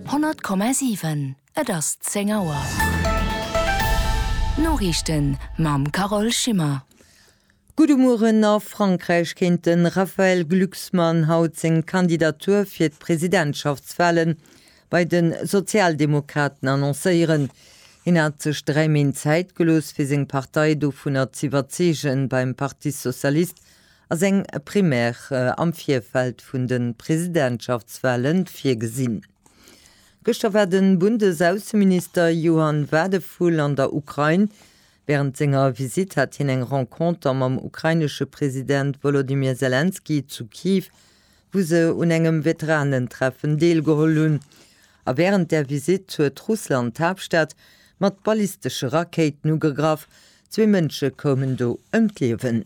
100,7 Et ass 10 Auer. D'Noriichten mam Carole Schimmer. Gudde Mueren, A Frankräich kéint de Raphaël Glucksmann haut seng Kandidatur fir d'Presidentschaftswale bei de Sozialdemokraten annoncéieren. Hien hat sech dräi Méint Zäit gelooss, fir seng Partei dovunner z'iwwerzeegen, beim Parti socialiste Ass eng Primaire am Virfeld vun de Presidentschaftswahle virgesinn? Gëschter war de Bundesaußenminister Johann Wadephul an der Ukrain. Wärend senger Visitt hat hien eng Renconter mam ukrainesche President Wolodymyr Selenskyj zu Kiew, wou se un engem Veteranentreffen deelgeholl hunn. A wärend där Visitt huet Russland d'Haaptstad mat ballistesche Rakéiten ugegraff. Zwee Mënsche koumen do ëm d'Liewen.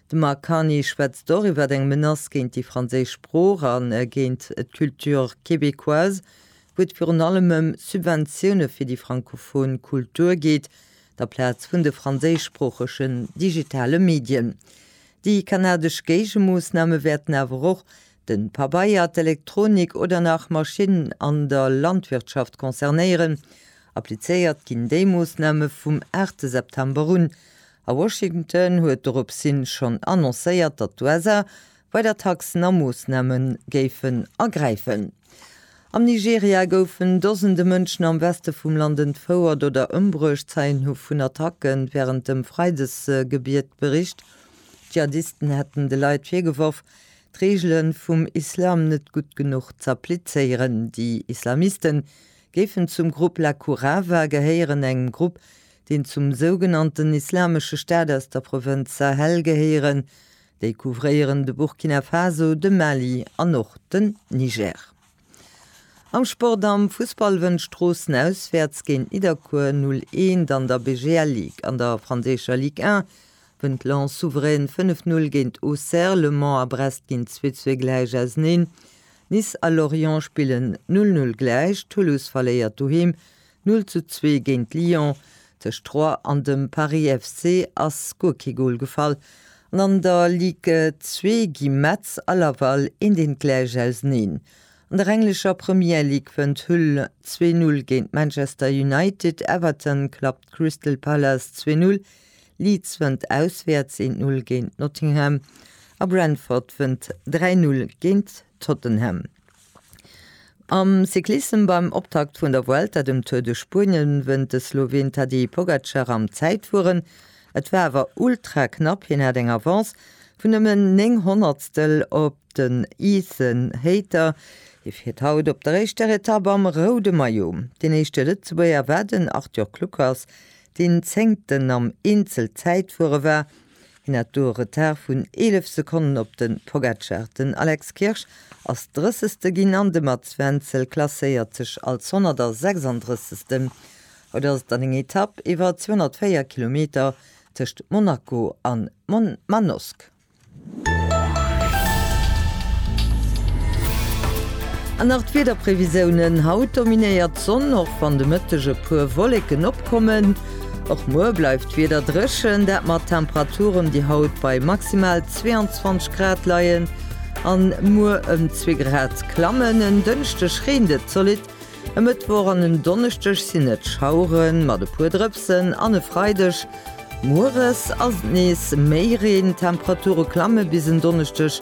De Marc Carny schwätzt och iwwer eng Menace géint déi franséisch Sprooch a géint d'Culture québécoise, wou et virun allem ëm Subventioune fir déi francophon Kultur geet, aplaz vun de franséischsproochegen digitale Medien. Déi kanadesch Géigemoossname wäerten awer och de Pabeier, d'Elektronik oder nach Maschinnen an der Landwirtschaft concernéieren. Applizéiert ginn déi Moossname vum 8 September un A Washington huet doropshin schonn annoncéiert, datt d'USA weider Taxen a Moossname géifen ergräifen. Am Nigeria goufen Dosende Mënschen am Weste vum Land entfouert oder ëmbruecht, Zeien hu vun Attacke wärend dem Freidesgebiet bericht. D'Dschihadisten hätten de Leit virgeworf, d'Reegele vum Islam net gutt genuch z'applizéieren. Déi Islamiste géifen zum Grupp Lakourawa gehéieren, engem Grupp, deen zum sougenannten Islamesche Staat aus der Provënz Sahel gehéieren. Déi couvréieren de Burkina Faso, de Mali an och den Niger. Am Sport, Am Fussball wënnt Stroossen auswäerts géint Nidderkuer 0 Eent an der BGL Ligue. An der franséischer Ligue 1 wënnt Lens souverän 5 Null géint Auxerre. Le Mans a Brest ginn 2 Zwee gläich auseneen. Nice a Lorient spillen 0 Null gläich. Toulouse verléiert doheem Null zu zwee géint Lyon. Tëscht Troyes an dem Paris FC ass guer kee Gol gefall an an der Ligue 2 gi Metz a Laval eendeentgläich auseneen. An der englescher Premier League wënnt Hull zwee Null géint Manchester United, Everton klappt Crystal Palace zwee Null, Leeds wënnt auswäerts eent Null géint Nottingham a Brentford wënnt dräi Null géint Tottenham. Am Cyclissem beim Optakt vun der Vuelta, dem Tour de Spuenien, wënnt de Sloween Tadej Pogacar am Zäitfueren. Et war awer ultra knapp, hien hat eng Avance vun nëmmen 9 Honnertstel op den Ethan Hayter. Hie fiert haut op der éischter Etapp am roude Maillot. Deen éischte Lëtzebuerger war den Arthur Kluckers, deen Zéngten am Eenzelzäitfuere war. Hien hat do e Retard vun 11 Sekonnen op de Pogacar. Den Alex Kirsch ass Drëssegste ginn an de Mats Wenzel klasséiert sech als 136. Haut ass et dann eng Etapp iwwer 204 Kilometer tëscht Monaco a Manosque. An nach d'Wiederprevisiounen, Haut dominéiert d'Sonn, och wann de Mëtteg e puer Wolleken opkommen. Och muer bleift d'Wieder dréchen, dat mat Temperaturen, déi haut bei maximal 22 Grad leien an muer ëm zwee Grad klammen. En Dënschdeg reent et zolidd, e Mëttwoch an en Donneschdeg sinn et Schauere mat e puer Drëpsen an e Freideg mueres ass et nees méi Reen. D'Temperature klamme bis en Donneschdeg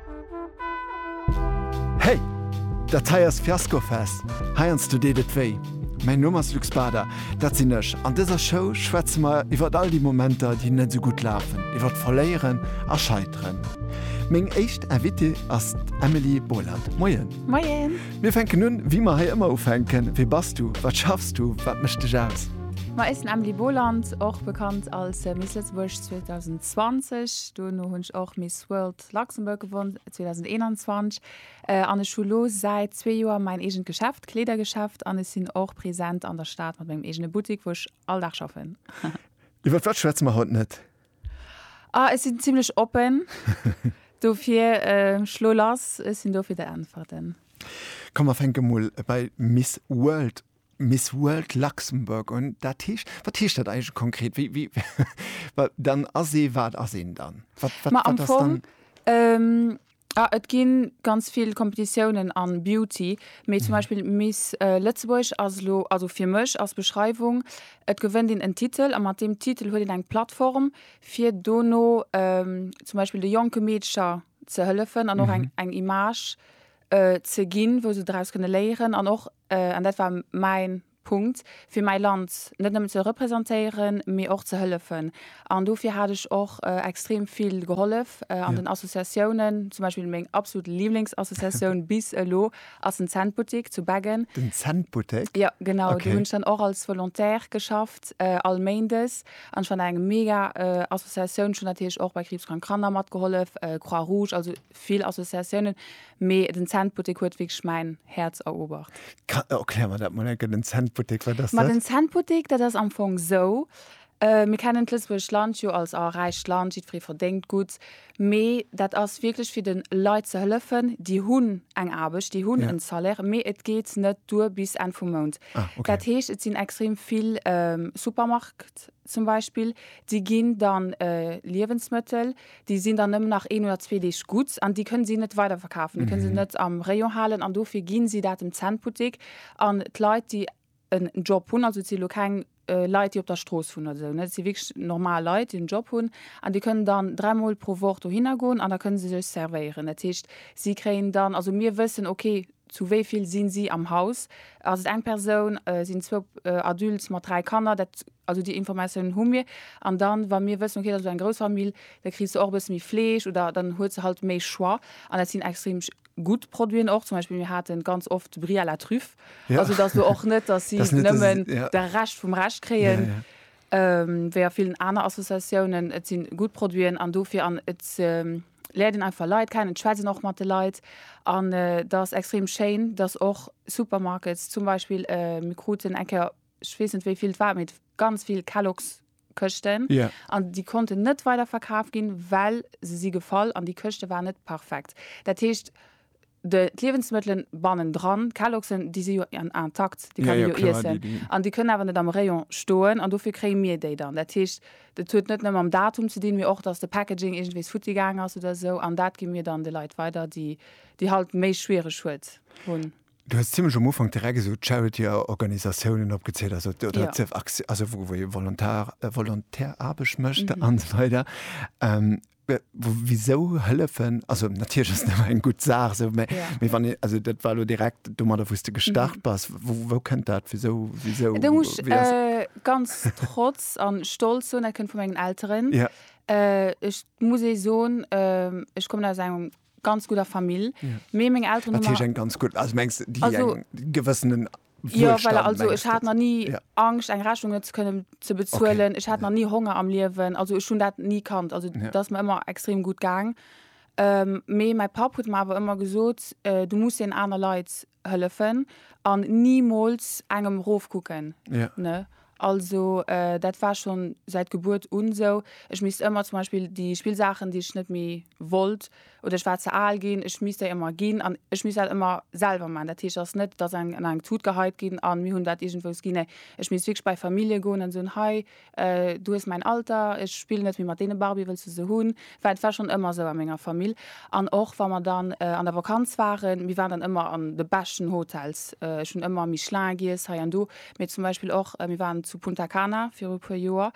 Hey! Dat hei ass Fiasco Fest, heiansdo deet et wéi. Mäin Numm ass Luc Bader, dat sinn ech. An dëser Show schwätze mer iwwert all déi Momenter, déi net esou gutt lafen, iwwert Verléieren a Scheiteren. Meng éischt Invitée ass d'Emily Boland. Moien! Moien! Mir fänken un, wéi mer hei ëmmer ufänken, Wie bass du? Wat schaffs du? Wat mécht dech aus? Ma ech sinn Emily Boland, och bekannt als Miss Lëtzebuerg 2020. Duerno hunn ech och Miss World zu Luxembourg gewonn, 2021, an ech hu lo säit zwee Joer mäin eegent Geschäft, Kleedergeschäft, an ech sinn och present an der Stad mat mengem eegene Buttik, wou ech all Dag schaffen. Iwwer wat schwätze mer haut net? Ah, ech sinn zimlech oppen, dofir schlo lass, ech sinn do fir der Äntwerten. Komm mer fänke mol bei Miss World Miss World Luxembourg un. Dat heescht, wat heescht dat eigentlech konkret? Wéi, wéi, wa, dann ass ee, wat ass een dann? Wat, wat, Ma am wat ass Fong, dann? ähm, ah, et gi ganz vill Kompetitiounen a Beauty, mee zum Beispill Miss äh, Lëtzebuerg ass elo, also fir mech ass d'Beschreiwung, et gewënnt een en Titel a mat deem Titel huet een eng Plattform, fir dono ähm, zum Beispill de jonke Meedcher ze hëllefen an och eng, eng Image äh, ze ginn, wou se draus kënne léieren an och an dat war mäin Punkt, fir mäi Land net nëmmen ze representéieren, mee och ze hëllefen. An dofir hat ech och extrem vill gehollef an den Associatiounen, zum Beispill meng absolut Liblingsassociatioun bis elo ass den Centbuttek zu Beggen. Den Centbuttek? Jo, genau. Do hunn ech dann och als Volontaire geschafft, all Méindes. An ech fand dat eng mega Associatioun. Ech hunn natierlech och bei Kriibskrank Kanner matgehollef, Croix-Rouge, also vill Associatiounen, mee den Centbuttek huet wierklech mäin Häerz eroobert. Erklär mer dat mol eng Kéier, den Centbuttek, wat ass dat? Ma den Centbuttek, dat ass am Fong esou, mir kennen d'lëtzebuergescht Land jo als, ah, räicht Land, jiddweree verdéngt gutt, mee dat ass wierklech fir de Leit ze hëllefen, déi hunn eng Aarbecht, déi hunn en Salaire, mee et geet net duer bis Enn vum Mount. Dat heescht, et sinn extrem vill Supermarktsbutteker, zum Beispill, déi ginn dann Liewensmëttel, déi sinn dann nëmmen nach een oder zwee Deeg gutt an déi kënne si net weiderverkafen, déi kënne se net am Rayon halen an dofir gi si dat dem Cent-Buttek an d'Leit, déi en Job hunn, also et si elo keng Leit, déi op der Strooss wunnen oder esou, et si wierklech normal Leit, déi en Job hunn an déi kënnen dann dräi Mol pro Woch dohinner goen an da kënne se sech servéieren. Dat heescht, si kréien dann, also mir wëssen, okay, Zu wéi vill sinn si am Haus? Ass et eng Persoun? Sinn zwou Adultes mat dräi Kanner? Dat, also déi Informatiounen hu mir. An dann, wa mir wëssen, okay, dat ass elo eng grouss Famill, da kriss de och e bësse méi Fleesch oder dann hues de halt méi Choix. An dat sinn extrem gutt Produiten och. Zum Beispill, mir hate ganz oft de Brie à la Truffe. Also et ass elo och net, datt si nëmmen de Rescht vum Rescht kréien, wéi a villen aner Associatiounen. Et si gutt Produiten an dofir. An et. läert een einfach Leit kennen, d'Schwätzen och mat de Leit an et ass extrem schéin, dass och Supermarkets zum Beispill, mir kruten eng Kéier, ech weess net wéi vill et war, mee ganz vill Kellogs Këschten an déi konnten net weiderverkaf ginn, well se si gefall an déi Këschte waren net perfekt. Dat heescht, de d'Liewensmëttelen bannendran, d'Kelloggsen, déi si jo intakt, déi kann ee jo iessen. An déi kënnen awer net am Rayon stoen an dofir kréie mir déi dann. Dat heescht, dat huet net nëmme mam Datum ze dinn, mee och, datt de Packaging iergendwees futti gaangen ass oder esou. An dat gi mir dann de Leit weider, déi déi halt méi schwiereg huet hunn. Du hues zimlech am Ufank direkt esou d'Charity-Organisatiounen opgezielt, also wou ee Volontaire, Volontaireaarbecht mécht an esou weider. Wisou hëllefen? Also natierlech ass et ëmmer eng gutt Saach esou, mä mee wann een, also dat war elo direkt domadder wou s de gestart bass. Wou wou kënnt dat? Wisou wisou wéi ass? Ech muss ganz trotz a stolz soen, dat kënnt vu mengen Elteren. Ech muss ee soen, ech kommen aus enger ganz gudder Famill, mee meng Elteren hu mer. Wat heescht eng ganz gutt? Also mengs déi eng gewëssenen Jo, voilà, also ech hat nach ni Angscht eng Rechnung net ze kënnen ze bezuelen, ech hat nach ni Honger am Liewen, also ech hunn dat ni kannt, also dat ass mer ëmmer extrem gutt gaang. Mee mäi Papp huet mer awer ëmmer gesot, du muss een aner Leit hëllefen an nimools engem rof kucken, ne? Also dat war schonn säit Gebuert un esou. Ech misst ëmmer zum Beispill déi Spillsaachen déi ech net méi wollt oder ech war ze al ginn, ech misst déi ëmmer ginn an ech misst dat ëmmer selwer man. Dat heescht ass net dass eng an eng Tut geheit ginn an mir hunn dat iergendwous ginn. Nee ech misst wierklech bei Famillje goen an soen, hei du hues mäin Alter, ech spillen net méi mat deene Barbie, wëlls de se hunn? Well et war schonn ëmmer esou a menger Famill an och wa mer dann an der Vakanz waren, mir waren dann ëmmer an de beschten Hotels, ech hunn ëmmer Michelin giess hei an do, Mee zum Beispill och, mir waren zu Punta Cana viru e puer Joer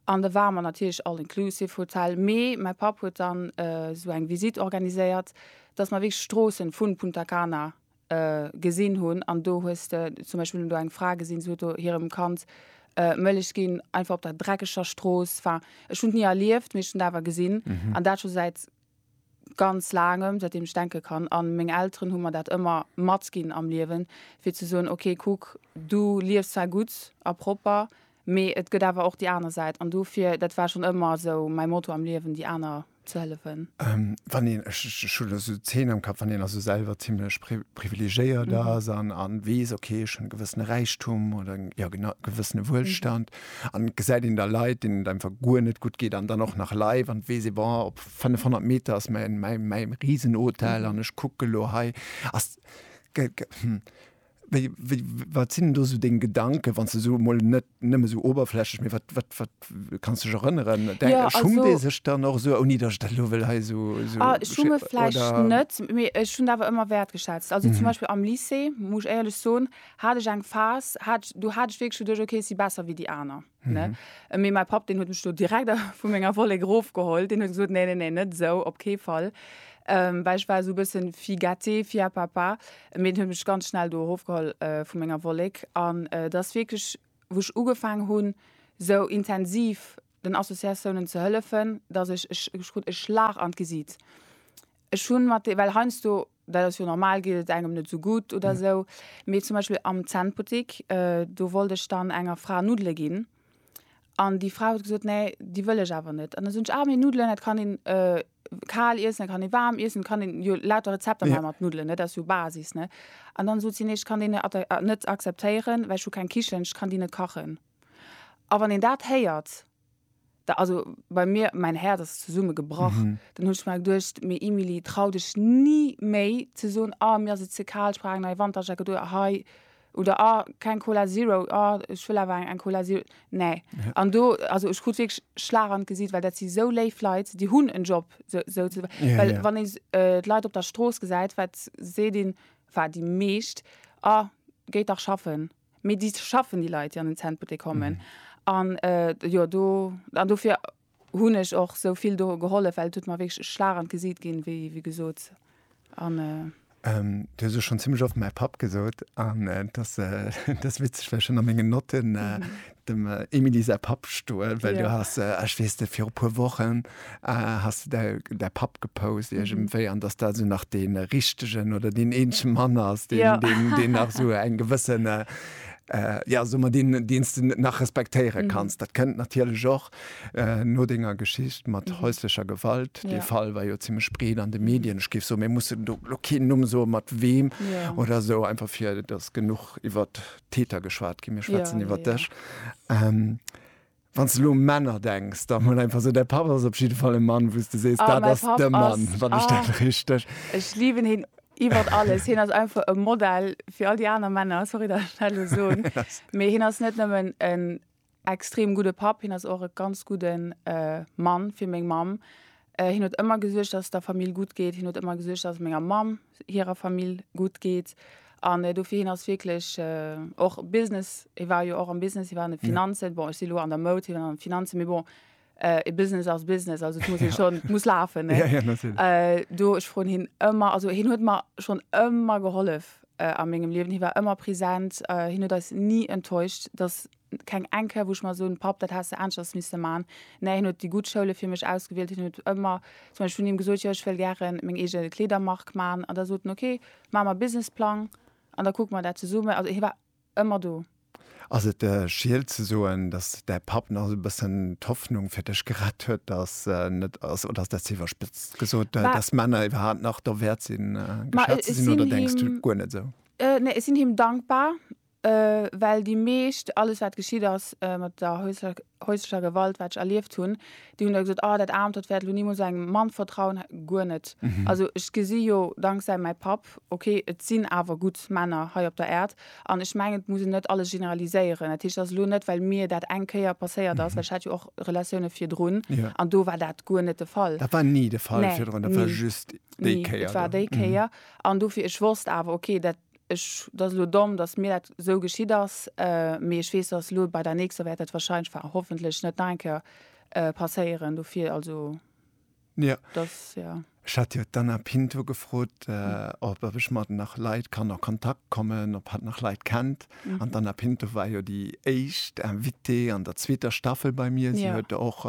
an da ware mer natierlech all-inclusive Hotel, mee mäi Papp huet dann esou eng Visite organiséiert, dass mer wierklech d'Stroossen vu Punta Cana gesinn hunn an do hues de zum Beispill hunn do eng Fra gesinn, se huet do hirem Kand Mëllech ginn, einfach op der dreckeger Strooss. Enfin, ech hunn et ni erlieft, mee ech hunn et awer gesinn an dat scho säit ganz laangem, säitdeem ech denke kann, an meng Elteren hu mer dat ëmmer matginn am Liewen, fir ze soen, ok kuck, du liefs zwar gutt a propper, mee et gëtt awer och déi aner Säit, an dofir, dat war schonn ëmmer esou mäi Motto am Liewen, déi aner ze hëllefen. Wann een, ech hu elo esou Zeen am Kapp, wann een also selwer zimmlech privilegéiert ass an weess, ok ech hunn e gewëssene Räichtum oder jo genau e gewëssene Wuelstand, An et gesäit een da Leit, deenen et einfach guer net gutt geet an dann och nach live an weess ee, bon, op 500 Meter ass mäi, mäi, mäi Risenhotel an ech kucken elo hei, ass, ge, ge, hm, wéi, wéi, wat sinn do esou deng Gedanken, wann s de esou emol net nëmme esou oberflächlech, mee wat, wat, wat kanns du dech erënneren? Denk, Ja, schummt also, ee sech dann och esou, ouni dass ech dat elo wëll hei esou, esou ah, schi, schumme vläicht oder? net, mee ech hunn dat awer ëmmer wäertgeschätzt. Also zum Beispill am Lycée, muss ech éierlech soen, hat ech eng Phas, hat, do hat ech wierklech geduecht, okay, ech si besser wéi déi aner. Ne? Mhm. Mee mäi Papp, deen huet mech do direkt vu menger Wollek erofgeholl. Deen huet gesot, nee, nee, nee, net esou, op kee Fall. Ähm, well ech war esou e bëssen fille gâtée, fille à papa. Mee den huet mech ganz schnell do erofgeholl äh, vu menger Wollek. An äh, dat ass wierklech, wou ech ugefaangen hunn, esou intensiv den Associatiounen ze hëllefen, dass ech, ech, ech krut e Schlag an d'Gesiit. Ech hunn mat de, well heiansdo dat ass jo normal, geet et engem net esou gutt oder esou, mee zum Beispill am Zännbuttik, do wollt ech dann enger Fra Nuddele ginn an déi Fra huet gesot, nee, déi wëll ech awer net. An da sot ech, ah, mee Nuddelen, dat kann een kal iessen, dat kann ee waarm iessen, et kann een jo lauter Rezepter maache mat Nuddelen, dat ass jo Basis, ne. An dann sot si, nee, ech kann déi net akzeptéieren, well ech hu keng Kichen, ech kann déi net kachen. A wann een dat héiert, Da, also bei mir, mäin Häerz ass zesumme gebrach. Dann hunn ech mer geduecht, Mee Emilie, trau dech ni méi ze soen, Ah, mir ass et ze kal, ech brauch eng nei Wanterjacket oder hei, oder Ah, keng Cola Zero, ah, ech wëll awer eng Cola Zero. Nee. An do, also ech krut wierklech Schlag an d'Gesicht, well dat si sou léif Leit, déi hunn en Job, sou, sou ze, well wann ee d'Leit op der Strooss gesäit, wat seet een, enfin déi meescht, Ah, geet dach schaffen. Mee déi schaffen, déi Leit, déi an den Centbuttek kommen. An jo, do, an dofir hunn ech och esou vill do gehollef, well et huet mer wierklech e Schlag an d'Gesiit ginn, wéi, wéi gesot. An. Du hues elo schonn zimmlech oft mäi Papp gesot. An et ass, et ass witzeg, well ech hunn a mengen Notten, dem Emilie säi Papp stoen, well du hast, ech weess net, viru puer Wochen hast du däi Papp gepost iergendwéi an datt dat esou nach dee richtegen oder deen eenzege Mann ass, deen nach esou eng gewësse, jo so mer, deen s de nach respektéiere kanns. Dat kënnt natierlech och no denger Geschicht mat häuslecher Gewalt. Dee Fall war jo zimmlech breet an de Medien. Ech géif soen, mir mussen elo keen Numm soen, mat weem oder esou, einfach fir datt genuch iwwert Täter geschwat ginn, mir schwätzen ja, iwwer dech. Ja. Ähm, Wann du lo Männer denkst, da mal einfach so der Papa ist auf jeden Fall ein Mann, wo du sest ah, da das der Mann, wann ah, ich dann richtig. Ich liebe ihn iwwer alles hin ass einfach e Modell fir all die aner Männer sorry der Stelle so méi hin ass net nëmmen en Extrem gudde Papp, hien ass och e ganz gudde Mann fir meng Mamm. Hien huet ëmmer gesuergt, dass et der Famill gutt geet. Hien huet ëmmer gesuergt, dass et menger Mamm hirer Famill gutt geet. An dofir, hien ass wierklech och Business, hie war jo och am Business, hie war an de Finanzen, bon ech si elo an der Moud, hien an de Finanzen, mee bon, Äh, Business as Business, also muss ja. schon, muss lafen ja, ja, äh, do ech fro hin ëmmer also hin huet mar schon ëmmer gehollef äh, a mengegem Liwen hi war ëmmer präsent äh, hin huet eis nie enttäuscht dass keng enke woch mal so pap dat hast anschers miss man ne hin huet die gut Schoule fir mech ausgewählt hin huet ëmmer zum Beispiel hun ihm gesot ja, ich will gern meng egel Kledermark man an der soten okay ma ma Businessplang an da guck man dat ze summen also hi war Ëmmer do. Ass et Schield ze soen, dass däi Papp nach esou e bëssen d'Hoffnung fir dech gerett huet, dass en net ass, oder ass dat ze iwwerspëtzt gesot, dass Männer iwwerhaapt nach derwäert sinn, geschat ze sinn, oder denks du guer net esou? Nee, ech sinn him dankbar, well déi meescht, alles wat geschitt ass mat der häuslecher Gewalt, wat ech erlieft hunn, Déi hunn da gesot, oh dat Aarmt, dat wäert elo nimools engem Mann vertrauen. Guer net. Also ech gesi jo danksäi mäi Papp, ok, et sinn awer gutt Männer hei op der Äerd. An ech mengen, et muss een net alles generaliséieren. Dat heescht, et ass elo net, well mir dat eng Kéier passéiert ass, well ech hat jo och Relatioune virdrun an do war dat guer net de Fall. Dat war ni de Fall virdrun, dat war just déi Kéier do? Nee, dat war déi Kéier. An dofir, ech wosst awer, ok, dat Ech, dat ass elo domm, datt mir dat esou geschitt ass, mee ech weess, datt elo bei der nächster wäert dat wahrscheinlech, enfin hoffentlech net nach eng Kéier passéieren. Dofir also, datt, jo. Ech hat jo d'Anna Pinto gefrot, ob, ob ech mat nach Leit kann a Kontakt kommen, ob hatt nach Leit kennt. An d'Anna Pinto war jo déi éischt Invitée an der zweeter Staffel bei mir. Si huet och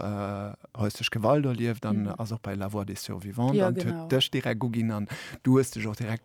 Häusleche Gewalt erlieft an ass och bei La voix des survivantes an huet dech direkt uginn an du hues dech och direkt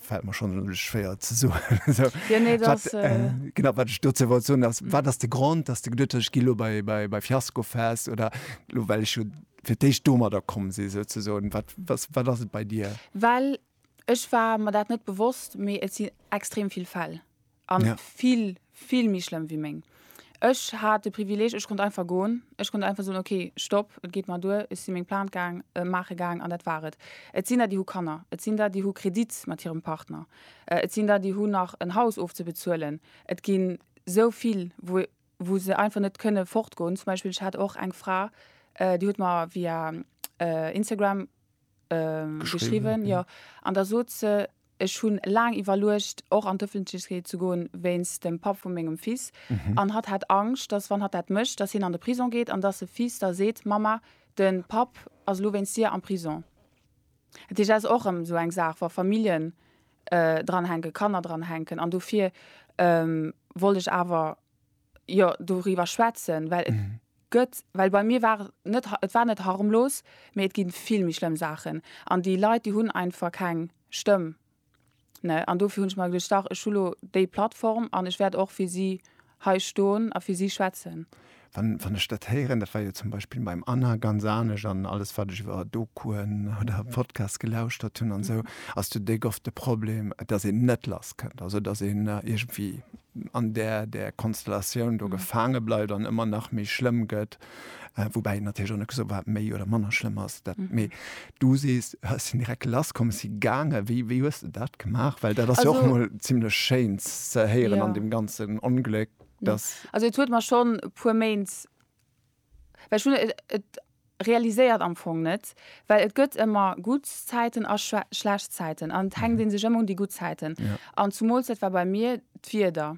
fällt mir schon nämlich schwer zu so ja, nee, das, wat, äh, äh, genau wat ich dazu wollte so dass war das der Grund dass du geduttech Kilo bei bei bei Fiasko fest oder lo well ich fir dich domer da kommen sie so zu so wat was war das bei dir well ich war mir dat net bewusst mir sinn extrem viel Fäll An ja. vill, vill méi schlëmm wéi meng. Ech hat de Privileg, ech konnt einfach goen. Ech konnt einfach soen, okay, stopp, et geet mer duer, ech sinn meng Plainte gaang, äh, maache gaang an dat war et. Et sinn der, déi hu Kanner, et sinn der, déi hu Kredit mat hirem Partner, äh, et sinn der, déi hunn nach en Haus ofzebezuelen. Et ginn sou vill, wou, wou se einfach net kënne fortgoen. Zum Beispill, ech hat och eng Fra, äh, déi huet mer via äh, Instagram äh, geschriwwen, ja, an da sot se, Ech hunn laang iwwerluecht och an d'Öffentlechkeet ze goen wéinst dem Papp vu mengem Fils an hatt hat Angscht, dass wann hatt dat mécht, dass hien an de Prison geet an dass de Fils da seet, Mamma, de Papp ass elo wéinst dir am Prison. Dat heescht, dat ass och erëm esou eng Saach, wa Familljen dranhänken, Kanner dranhänken an dofir wollt ech awer, jo doriwwer schwätzen, well et mhm. gëtt, well bei mir war net et war net harmlos, mee et ginn vill méi schlëmm Saachen an déi Leit déi hunn einfach keng Stëmm. Ne an dofir hunn ech mal gedacht, dach ech hulo déi Plattform an ech wäert och fir si hei stoen a fir si schwätzen. Wann, wann ech dat héieren, dat war jo zum Beispiel beim Anna ganz anesch an alles wat ech iwwer Dokuen oder Podcast gelauschtert hunn an sou, mhm. ass du déck oft de Problem, dass een net lass kënnt, also dass een äh, irgendwie an där där Konstellatioun do gefaange bleift an ëmmer nach méi schlëmm gëtt, woubäi natierlech och net gesot wat méi oder manner schlëmm ass. Dat mee du sees hues sinn direkt lasskomm, si gaange. Wéi wéi hues de dat gemaach? Well dat ass jo och Also- emol zimmlech schéin ze héieren an Ja. deem ganzen Ongléck, datt. Also et huet mer schonn e puer Méint Well ech hunn et realiséiert am Fong net, well et gëtt ëmmer gutt Zäiten a schlecht Zäiten an et hänkt ee sech ëmmer un déi gutt Zäiten. An zumools, dat war bei mir d'Wieder,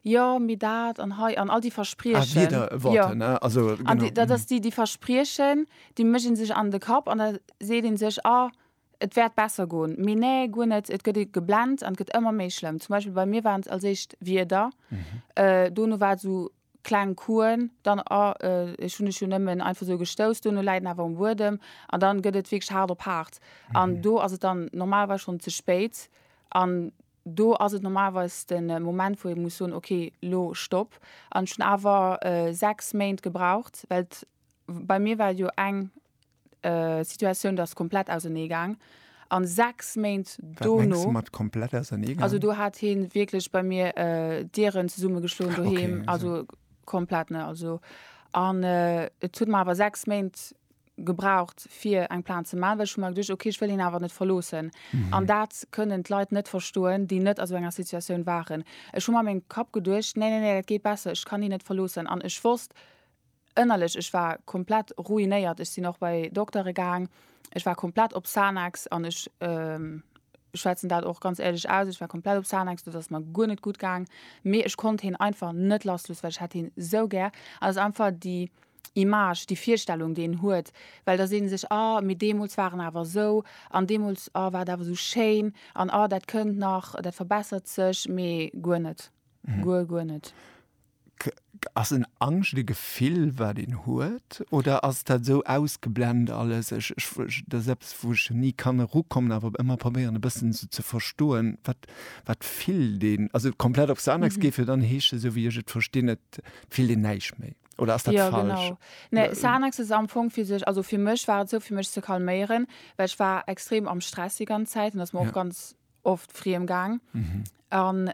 jo mee dat an hei an all déi Verspriechen, jo an dat ass déi Verspriechen, déi mécht ee sech an de Kapp an da seet ee sech, ah et wäert besser goen, mee nee guer net, et gëtt ee geblent an et gëtt ëmmer méi schlëmm. Zum Beispill bei mir waren et als éischt d'Wieder, dono war et esou kleng Kuen, dann a, ech hunn dech jo nëmmen einfach esou gestouss, duerno läit en awer um Buedem an dann gëtt et wierklech haart op haart an do ass et dann normalerweis schonn ze spéit an do ass et normalerweis de Moment, wou ee muss soen, okay, lo Stopp an ech hunn awer sechs Méint gebraucht, well bei mir war et jo eng. Situatioun, dat ass komplett ausernee gaang. A sechs Méint dono. Wat mengs du mat komplett ausernee gaang? Also do hat hie wierklech bei mir Dieren zesumme geschloen doheem, also komplett, ne. Also an et huet mer awer sechs Méint gebraucht fir eng Plainte ze man, well ech hu mer geduecht, ok ech wëll hien awer net verloossen. An dat kënnen d'Leit net verstoen, déi net a sou enger Situatioun waren. Ech hu mer a mengem Kapp geduecht, nee, nee, nee, dat geet besser, ech kann hien net verloossen. An ech wosst. Ënnerlech, ech war komplett ruinéiert. Ech sinn och bei Doktere gaang. Ech war komplett op Xanax an ech schwätzen dat och ganz éierlech aus, ech war komplett op Xanax, do ass mer guer net gutt gaang. Mee ech konnt hien einfach net lassloossen, well ech hat hien esou gär. An et ass einfach déi Image, déi Virstellung, déi een huet, well da seet ee sech, ah, mee deemools war en awer esou an deemools, ah, war et awer esou schéin an ah, dat kënnt nach, dat verbessert sech. Mee guer net, guer, guer net. Ass en Angscht e Gefill wat een huet oder ass dat esou ausgeblend alles? Ech ech dat ass eppes wou ech ni kann erukommen awer ëmmer probéieren e bëssen esou ze verstoen wat wat fillt een? Also komplett op Xanax geet wier dann heescht esou wéi ech et verstinn et fillt een näischt méi oder ass dat falsch? Jo genau. Nee Xanax ass am Fong fir sech also fir mech war et esou fir mech ze calméieren well ech war extrem am Stress déi ganz Zäit an ass mer och ganz oft friem gaang an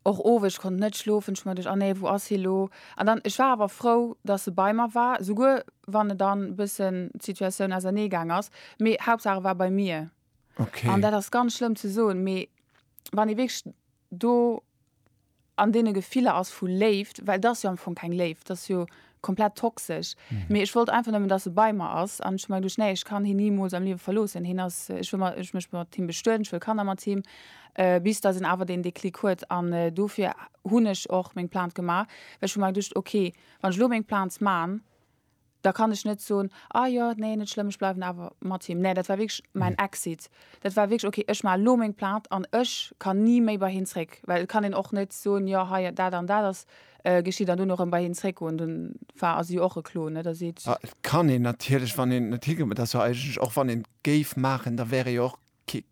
Och owes, ech konnt net schlofen, ech mer duerch, ah nee, wou ass hie lo? An dann, ech war awer frou, dass se bei mer war, souguer wann et dann e bëssen d'Situatioun ausernee gaang ass, mee Hauptsaach e war bei mir. An dat ass ganz schlëmm ze soen, mee wann ee wierklech do an deene Gefiller ass vu Léift, well et ass jo am Fong keng Léift, et ass jo Komplett toxesch. Mee ech wollt einfach nëmmen, dass e bei mer ass. An ech hu mer geduecht, Nee, ech kann hien nimools am Liewe verloossen. Hien ass, ech wëll mer, ech mécht mat him bestueden, ech wëll Kanner mat him. Bis dass en awer deen Déclic huet. An dofir hunn ech och meng Plainte gemaach. Well ech hu mer geduecht, Ok, wann ech elo meng Plainte man, da kann ech net soen, Ah jo, nee, net schlëmm, ech bleiwen awer mat him. Nee, dat war wierklech mäin Exit. Dat war wierklech, Ok, ech maachen elo meng Plainte an ech kann ni méi bei hien zréck. Well et kann een och net soen, Jo, hei dat an dat ass Geschitt an dunn och erëm bei hien zréckgoen, dunn war ass jo och e Clou, net? A seet. Ah, et kann een natierlech, wann een net higëtt, mä et ass jo eigentlech och, wann een et géif maachen, da wär e jo och kee,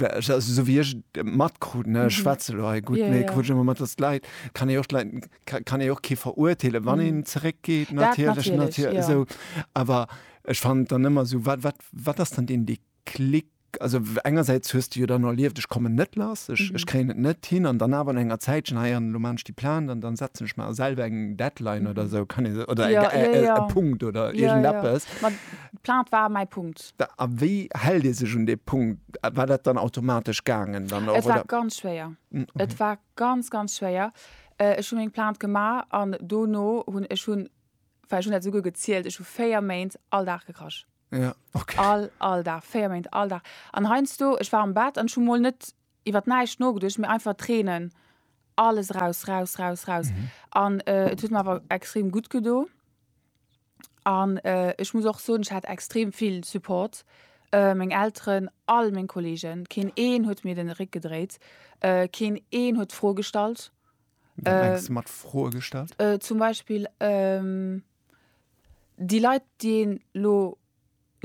also esou wéi ech et matkrut, ne, ech schwätze lo hei gutt, mee krut ech ëmmer mat, datt d'Leit, kann ee och d'Leit, kann ee och kee verurteelen, wann een zeréckgeet, natierlech, natierlech, esou. Awer ech fannen et dann ëmmer esou, wat, wat, wat ass dann den Déclic? Klick, Also engersäits hues de jo dann erlieft, ech kommen net lass, ech kréien et net hin an dann awer no enger Zäitchen, hei an elo maan ech déi Plainte an dann setzen ech mer selwer eng Deadline oder esou, kann ee, oder e Punkt oder iergendeppes. Jo, jo, jo. D'Plainte war mäi Punkt. A wéi hält ee sech un dee Punkt? War dat dann automatesch gaangen dann och, oder? Et war ganz schwéier. Et war ganz, ganz schwéier. Ech hu meng Plainte gemaach an dono hunn, ech hunn, well ech hunn dat esouguer gezielt, ech hu véier Méint all Dag gekrasch. Ja, okay. All, all Dag, véier Méint, all Dag. An heiansdo, ech war am Bett an ech hu mol net iwwer näischt nogeduecht, mee einfach Tränen, alles raus, raus, raus, raus. Mhm. An äh, et huet mir awer extrem gutt gedo. An äh, ech muss och soen, ech hat extrem vill Support. Äh, meng Elteren, all meng Kollegen, keen een huet mir den Réck gedréit, äh, keen een huet d'Fro gestallt. Wat Äh, mengst du mat Froe gestallt? Äh, zum Beispill, ähm, Déi Leit, déi een elo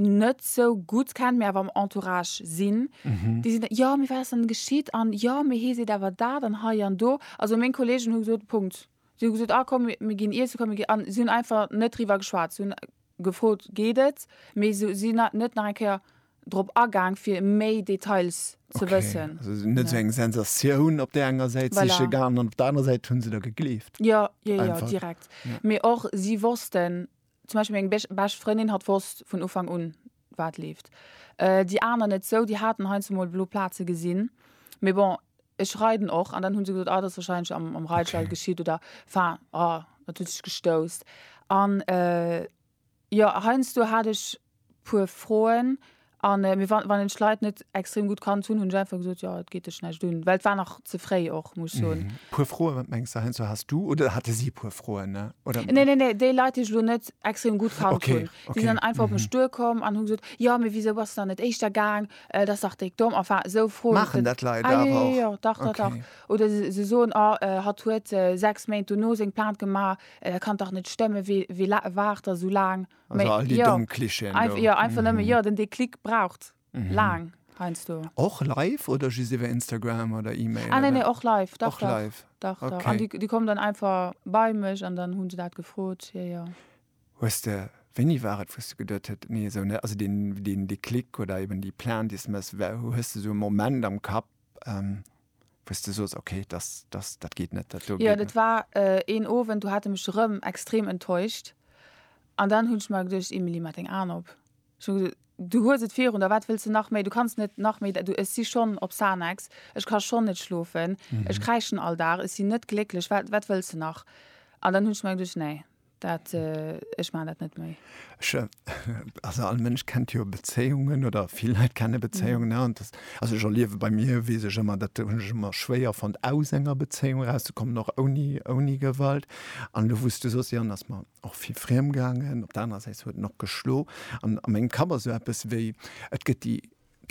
net sou gutt kennt, mee awer am Entourage sinn, déi sinn da, jo, mee wat ass dann geschitt an jo, mee hee seet awer dat an hei an do. Also meng Kolleegen hu gesot, Punkt. Si hu gesot, ah komm, mir ginn iessen, komm, mir ginn. An si hunn einfach net driwwer geschwat. Si hunn gefrot, geet et? Mee si hunn net nach eng Kéier drop agaang fir méi Details ze wëssen. Okay, also net sou eng Sensatioun op där enger Säit voilà. siche gaangen an op der anerer Säit hunn se der gegleeft. Jo, jo, jo, Einfach. direkt. Ja. Mee och si wossten, zum Beispill meng bech bescht Frëndin hat wosst vun Ufank un wat leeft. Äh, déi aner net sou, déi haten heiansdo emol blo Plaze gesinn, mee bon, ech reiden och an dann hunn se gesot, ah, dat ass wahrscheinlech am, am Reitstall okay. geschitt oder enfin, ah, dat huet sech gestousst an äh, Jo, heiansdo hat ech puer Froen a mee wa wann een d'Leit net extrem gutt kannt hunn, hunn ech einfach gesot, jo et geet dech näischt un, well et war nach ze fréi och muss ech soen. Puer Froen, wat mengs de heiansdo has du oder hate si puer Froen oder? Nee nee nee, déi Leit déi ech elo net extrem gutt kannt hunn, déi sinn dann einfach op mech duer komm an hu gesot, jo mee wisou bass de dann net éischter gaang, dat ass dach déck domm, enfin esou Froen. Maachen dat Leit awer och? Ah jo jo jo, dach dach dach. Oder se soen, oh hatt huet 6 Méint dono seng Plainte gemaach, Dat kann dach net stëmmen, wie waart da sou laang? Also all déi domm Klischeeën do. Jo, einfach nëmmen, jo, den Deklick braucht laang heiansdo. Och live oder just iwwer Instagram oder E-Mail? Ah, nee, nee, och live, dach, dach. Och live? Dach, dach. An déi kommen dann einfach bei mech an dann hu se dat gefrot, jo, jo. Hues de, wéini war et, wou s de geduet huet, nee, esou net, also deen Deklick oder eben déi Plainte, déi s de méchs, hues de esou e Moment am Kapp? wou's de soos ok dass dass dat geet net dat do geet net. Jo dat war een Owend do hat e mech rëm extrem enttäuscht an dann hunn ech mer geduecht Emilie maach deng Aen op ech hunn gesot du hues et virun der wat wëlls de nach méi du kanns net nach méi du ech si schonn op Xanax ech ka schonn net schlofen ech kräischen all Dag ech sinn net glécklech wat wat wëlls de nach an dann hunn ech mer geduecht nee. Dat, ech maachen dat net méi. Ech, also all Mënsch kennt jo Bezéiungen oder vill Leit kenne Bezéiungen, ne? Und das, also ech erliewe bei mir, weess ech ëmmer, dat hunn ech ëmmer schwéier fonnt, aus enger Bezéiung erauszekommen, och ouni, ouni Gewalt. An elo, wou s du sos, jo, dann ass mer och vill friem gaangen, op der anerer Säit huet en och geschlo. An a mengem Kapp ass esou eppes wéi, et gëtt déi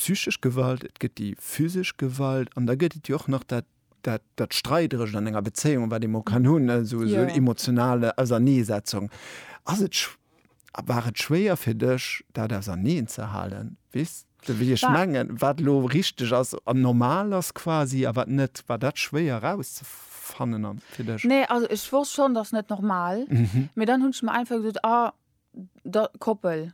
psychesch Gewalt, et gëtt déi physesch Gewalt an da gëtt et jo och nach dat, dat, dat Streiderecht an enger Bezéiung, wat ee mol kann hunn, esou, esou en emotionale Auserneesetzung. Ass et, a war et schwéier fir dech, dat auserneen ze halen? Weess de, wéi ech mengen? Wat elo richteg ass an normal ass quasi a wat net? War dat schwéier erauszefannen an, fir dech? Nee, also ech wosst schonn, dass net normal, mee dann hunn ech mer einfach gesot, ah, da, Koppel.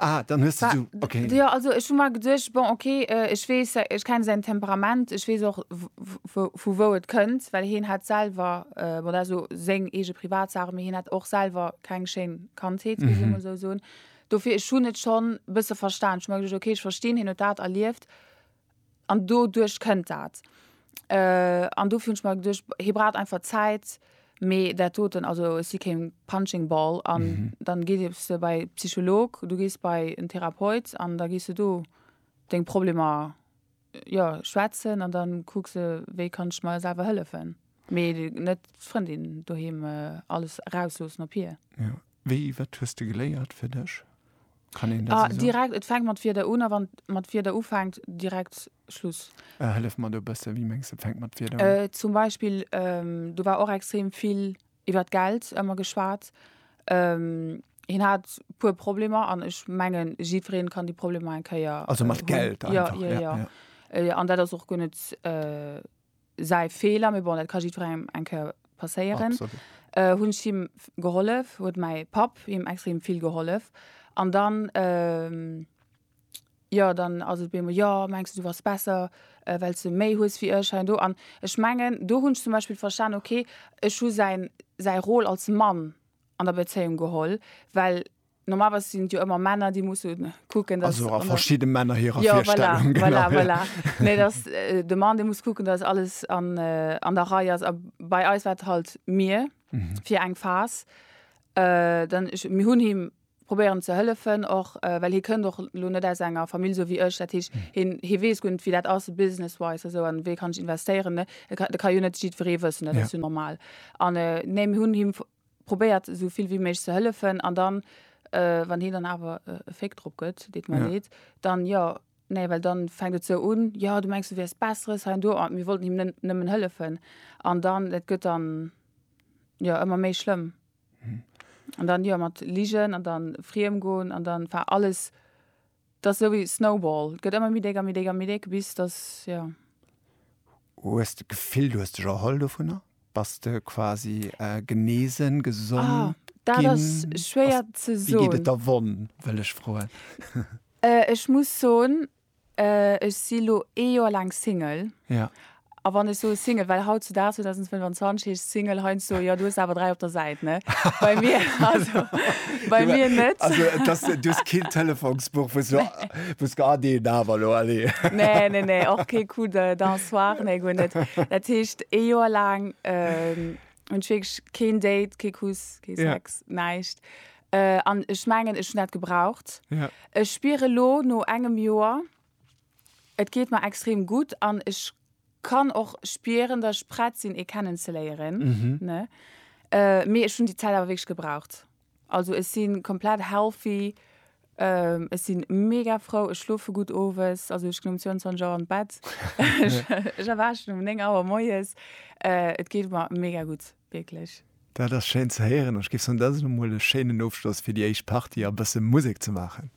Ah, dann hues de du, ok. Jo, also ech hu mer geduecht, bon, ok, ech weess, ech kenne säin Temperament, ech weess och, vu wou et kënnt, well hien hat selwer, bon, dat ass elo seng eege Privatsach, mee hien hat och selwer keng schéin Kandheet, muss ee mol esou soen. Dofir, ech hunn et schonn e bësse verstan. Ech hu mer geduecht, ok, ech verstinn, hien huet dat erlieft, An doduerch kënnt dat. An dofir hunn ech mer geduecht, hie braucht einfach Zäit. Mee dat doten, also ech si kee Punching Ball. An da gees de bei e Psycholog, du gees bei en Therapeut an da gees de do deng Problemer, jo, schwätzen. An da kucks de, wéi kann ech mer selwer hëllefen. Mee net d'Frëndin doheem alles erausloossen op hir? Jo. Wéi, wat hues de geléiert fir dech? Kann een dat esou soen? Direkt, et fänkt mat Wierder un a wann et mat Wierder ufänkt, direkt Schluss. Hëllef mer do e bësse, wéi mengs de, et fänkt mat Wierder un? Zum Beispill, do war och extrem vill iwwert Geld ëmmer geschwat. Hien hat e puer Problemer an ech mengen, jiddweree kann déi Problemer eng Kéier hunn. Also mat Geld einfach? Jo, jo, jo. An dat ass och guer net säi Feeler, mee bon, dat ka jiddwerengem eng Kéier passéieren. Absolut. Äh, hunn ech him gehollef, huet mäi Papp him extrem vill gehollef. An dann, ähm, jo, dann ass et op eemol, jo, mengs de, du bass besser, well s de méi hues wéi ech hei an do. An ech mengen, do hunn ech zum Beispill verstanen, okay, ech hu säin, säi Rôle als Mann an der Bezéiung geholl, well. Normalerweis sinn et jo ëmmer Männer, déi musse kucken, dass. Also a verschidde Männer hirer ja, Virstellung. Voilà, genau, voilà, voilà. nee, dass äh, de Mann, dee muss kucken, dass alles an, äh, an der Rei ass. A bei eis war et halt mir mhm. fir eng Phas. Äh, dann ich, mir hunn him probéieren ze hëllefen och äh, well hie kënnt och lo net aus enger Famill so wéi ech dat heescht hm. hin hie wees gunnt wéi dat ass businesswise eso an wéi kann ich investéieren ne da kann jo net jiddweree wëssen dat ja. normal an äh, nee hunn him probéiert esou vill wéi méiglech ze hëllefen an dann wann hien dann awer e Féck drop gëtt, deet mer leed, dann jo, nee, well dann fänkt et esou un, jo du mengs du wäers besseres hei an do an mir wollten him nëmmen hëllefen an dann et gëtt dann jo ëmmer méi schlëmm an dann jo mat ligen an dann friem goen an dann enfin alles T'ass esou wéi Snowball, t'gëtt ëmmer méi déck a méi déck a méi déck, bis dass, jo. Hues de d'Gefill, du hues dech erholl dovunner? Bass de quasi genesen, gesond ginn? Ah, dat ass schwéier ze soen. Wéi geet et der Wonn, wëll ech froen? Ech muss soen, ech si lo ee Joer laang Single. Ja. A wann ech soe Single, well hautzudaags, 2025, heescht Single heiansdo, jo, du hues awer dräi op der Säit, ne? Bei mir, also, bei mir net. Also, et ass, du hues keen Telefonsbuch, wou s du, wou s du, ah, deen awer elo, allez. Nee, nee, nee, och kee Coup de, d'un soir, nee, guer net. Dat heescht, ee Joer laang hunn ech wierklech keen Date, kee Kuss, kee Sex, näischt. An ech mengen, ech hunn dat gebraucht. Ech spieren elo, no engem Joer. Et geet mer extrem gutt an ech kann och spieren dat ech prett sinn ee kennen ze léieren ne mee ech hunn déi Zäit awer wierklech gebraucht. Also ech si komplett healthy, ech si mega frou, ech schlofe gutt owes, also ech ginn um 22 Auer an d'Bett, ech erwaachen um 9 Auer moies, et geet mer mega gutt wierklech. Dat ass schéin ze héieren an ech géif soen dat ass elo mol e schéinen Ofschloss fir déi éischt Partie a bësse Musek ze maachen.